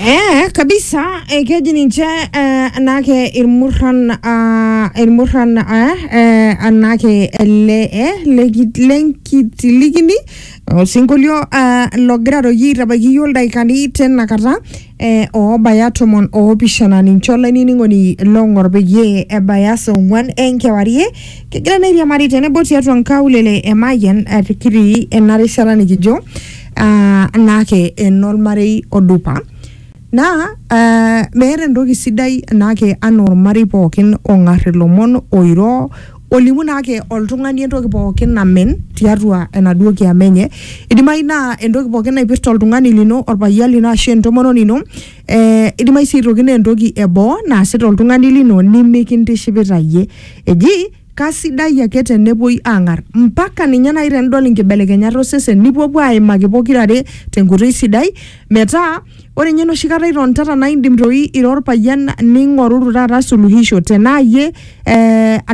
Eh, kabisa eh, keji ninche eh, anake irmurran ah, irmurran eh, eh, anake ele eh, leki- lenkitilikini osinkolio ah, logira toi aitabaiki iyio ildaikani tena kata eh, oobaya tomon oopishana ninche olainining'oni long'or peyie ebaya saa ong'uan enkewarie kegira nairiamari tenebo tiatua nkaulele emayian eh, kitii ena rishata nikijo ah, naake enormarei odupa naa ah, meeta entoki sidai naake anaa ormarei pookin ong'ar ilomon oiro olimu naake oltung'ani entoki pookin namen tiatua enaduo kiama enye idimayu naa entoki pookin naipirta oltung'ani lino orpayian lino ashu entomononi ino eh, idimayu sii aitoki naa entoki eboo naasita oltung'ani lino nimikintishipita iyie eji Kasidai ake te nepuoi aang'ar, mpaka ninye naaji tenidol inkibelekenyat osesen, nipuopuo aaimaki pokira are te nkoitoi sidai, metaa ore ninye enoshi kata itonitata naa indim doi ira olpayian ning'oruru taata suluhisho tenaa iyie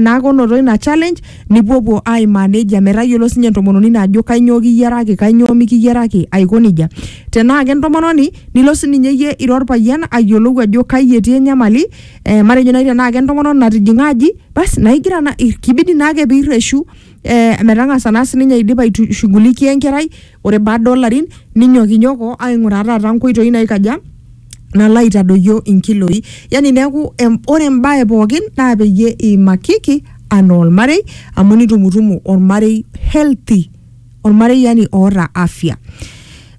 naake onoto ina challenge nipuopuo aaimaa nejia metayiolo sii ninye entomononi ino ajo kainyoo kiyiaraki, kainyoo mikiyiaraki aiko nejia. Tenaa kentomononi nilo sii ninye iyie ira olpayian ayiolou ajo kai etii enyamali. eh, matejo naaji tenaa kentomononi natijing'a aji basi naigira na i- kibidi naake piirreshu eh, metang'asa naa sininye aidipa aitushughulikia enkerai ore baada olarin ninyokinyoko aing'uraa taata nkoitoi naikaja nalo aitadoyio inkiloi yani neeku em, ore embae pookin naa peyie iimakiki anaa olmarei amu nitumutumu olmarei healthy ormareyiani oota afya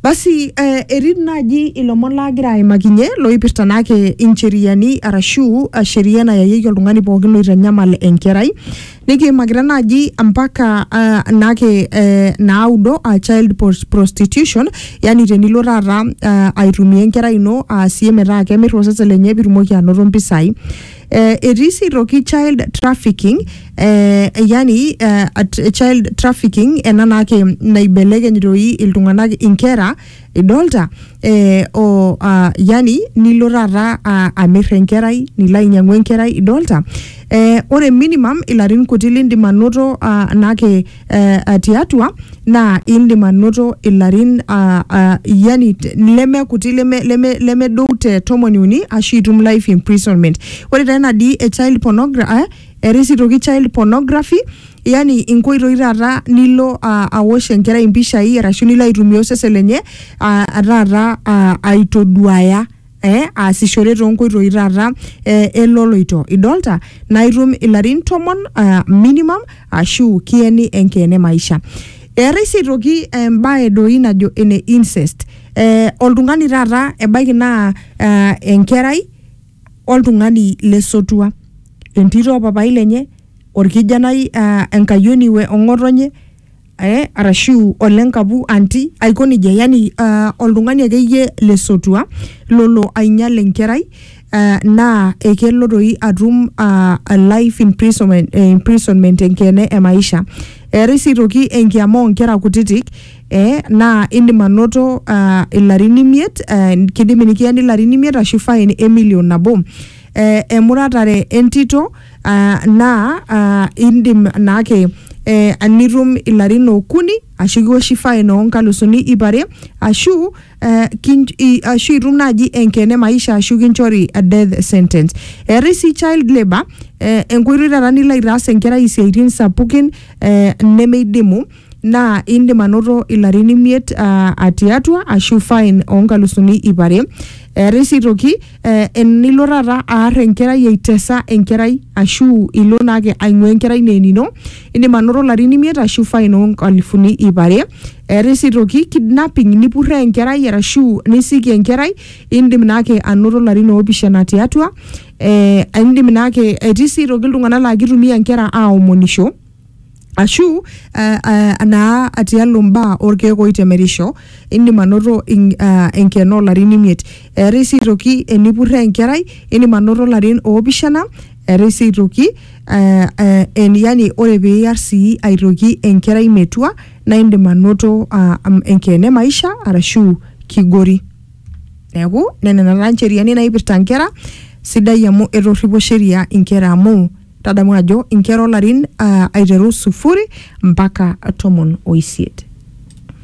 basi eh, etii naaji ilomon laagira aimakinye loipirta naake incheriani arashu uh, sheria nayayieki oltung'ani pookin loitanyamal enkerai nikiimakita naaji mpaka uh, naake eh, naudo uh, child pros- prostitution yani tenilo taata uh, aitumia enkerai ino aasie metaa kemir osesen lenye pitumoki anoto mpisai Eh, etii sii aitoki child trafficking eh, yani eh, at, child trafficking ena naake naibelekeny doi iltung'anak inkera idolta eh, o uh, yani nilo taata uh, amir enkerai nilo ainyang'u enkerai idolta eh, ore minimum ilarin kuti lindim anoto uh, naake eh, eh, tiatua naa indim anoto ilarin ah, ah, yani t- leme kuti leme- leme- lemedou te tomoni uni ashu itum life imprisonment ore taa ina dii e child pornography eh, eetae sii toki child pornography yani inkoitoi taata nilo ah, awosh enkerai impishai arashu nilo aitumia osesen lenye ah, taata ah, aitoduaya eh, aasishore toonkoitoi taata eh, eloloito idolta naa itum ilarin tomon uh, minimum ashu kieni enkeene maisha eetai sii aitoki embae doi najo ene incest eh, oltung'ani taata ebaiki naa uh, enkerai oltung'ani lesotua entito opapai lenye orkijanai uh, enkayioni we ong'otonye eh, arashu ole nkapu anti aiko nejia yani uh, oltung'ani akeyie lesotua lolo ainyal enkerai uh, naa ekelo toi atum uh, a life imprisonment, eh, imprisonment enkeene e maisha eetai sii toki enkiama oonkera kutitik eh, naa indim anoto uh, ilarin imiet uh, kidimi nikiyeni ilarin imiet ashu fine emilion nabo eh, emuratare entito Ah, naa ah, indim naake eh, nitum ilarin okuni ashu kiwoshi fine oo nkalusuni ip are ashu eh, kin, i, ashu itum naaji enkene maisha ashu kinchori a death sentence eetae sii child labour eh, enkoitoi taata nilo aitaas enkerai isiaitin sapukin eh, nemeidimu naa indim anoto ilarin imiet uh, atiatua ashu fine onkalusuni ip are eetae sii toki eh, enilo taata aar enkerai aitesa enkerai ashu ilo naake aing'ua enkerai naa enino indim anoto ilarin imiet ashu fine onkalifuni ip are eetae sii toki kidnapping nipurree enkerai arashu nisiki enkerai indim naake anoto ilarin oopishana tiatua eh, indim naake etii sii toki iltung'anak laa kitumia inkera aomonisho ashu eh, eh, naa tialo mbaa orkeek oitemerisho indim anoto in- ah, enkeno oolarin imiet eetai sii aitoki enipurre enkerai indim anoto ilarin oopishana eetai sii aitoki eh, eh, en- yani ore piiyar sii aitoki enkerai metua naa indim anoto ah, am- enkeene maisha arashu kigori neeku nena taa ncheriani naipirta inkera sidai amu etorripo sheria inkera amu Tadamu ajo inkera olarin aa aiteru sufuri mpaka tomon oisiet.